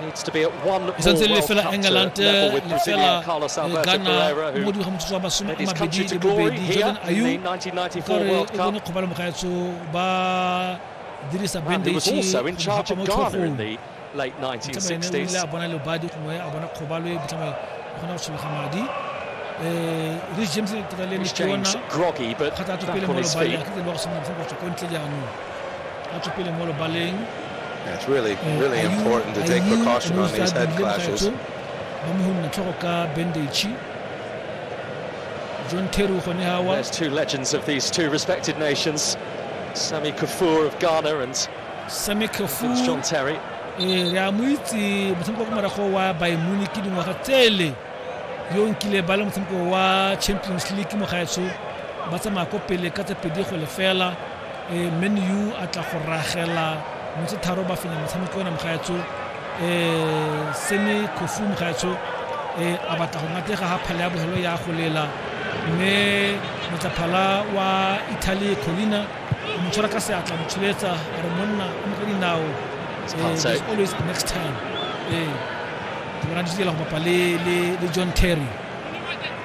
e santse le fela england lefela ghana mo dingwaga motsotso wa masome a mabedi le bobedi jordan ayu ka re e bone kgobalo mogaetso ba dirisa bandage mogapo mo tlhogong tsamaene o ile a bona lebadi gongwe a bona kgobalo e botlhama kgona go tshologa madi Rich James le tira le ne ke yona kgathatso pele mo lebadi a tlile le go sena go tswa ko ntle jaanong batswapele mo lobaleng It's really, eh, really important to take precaution on these head clashes. John Teru Honehawa. There's two legends of these two respected nations, Sami Kafur of Ghana and Sami Kafur. John Terry. Eh, re a mo itse motshameko wa morago wa bayern munich dingwaga tsele yo nkile ba le motshameko wa champions league mo gaetsho ba tsamaya ko pele ka tse pedi go lefela e man u a tla go ragela motse tharo ba fenya motshameko ona mogaetsho e sene khofu mogaetsho e a batla go ngatega ga phale ya bogelo ya go lela mme motlaphala wa italy colina a mo tshwara ka seatla mo tsholetsa a re monna o mo ka dinao eh, always next time ee ke bona di go bapa le john terry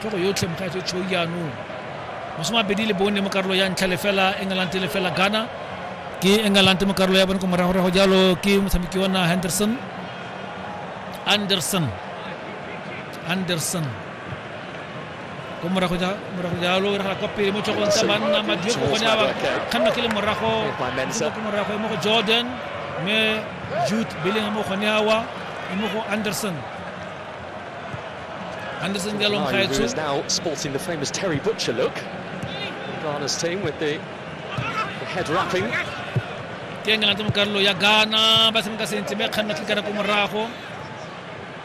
ke go yotlhe mokgaetso tshou jaanong mosomabedi le bone mo karolo ya ntlha lefela england lefela ghana ke england mo karolo ya bone ko moragorago jalo ke motshameki ona henderson anderson anderson ko morago jalo re kwa pele mo tlhogong tsa banna madio ko gone aba kganna ke le morago ko morago mo go jordan mme jude beleng mo gone awa mo go anderson Anderson Galon oh, Khaitsu. is now sporting the famous Terry Butcher look. Ghana's team with the, the head wrapping. ke engela tse mo karolo ya ghana ba tshameka sentle ba kganna tlikana ko morago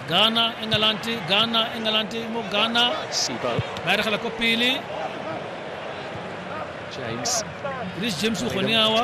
ghana england ghana england mo ghana ba eregela ko pele james chris james o gone awa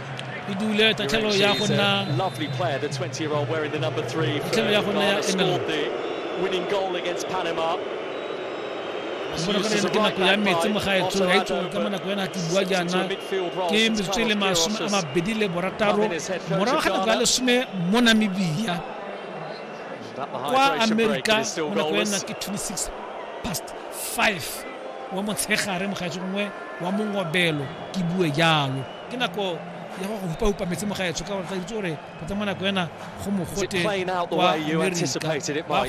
e dule tatlhelo ya go nna tatlhelo ya go nna ya emelo winning goal against Panama. bona gore ke nako ya metsi mo ga etso ya etso ka nako yana ke bua jaana ke metsotso le masome a mabedi le borataro morago ga nako ya lesome mo namibia kwa amerika mo nako yana ke 26 past 5 wa motshegare mogaetso gongwe wa mongobelo ke bue jalo ke nako ya go hupa-hupa metsi mo gaetsho ka gore tla itse gore go tsa mo nako ena go mogote kwa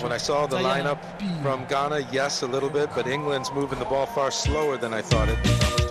When I saw the lineup from Ghana, yes, a little bit, but England's moving the ball far slower than I thought it.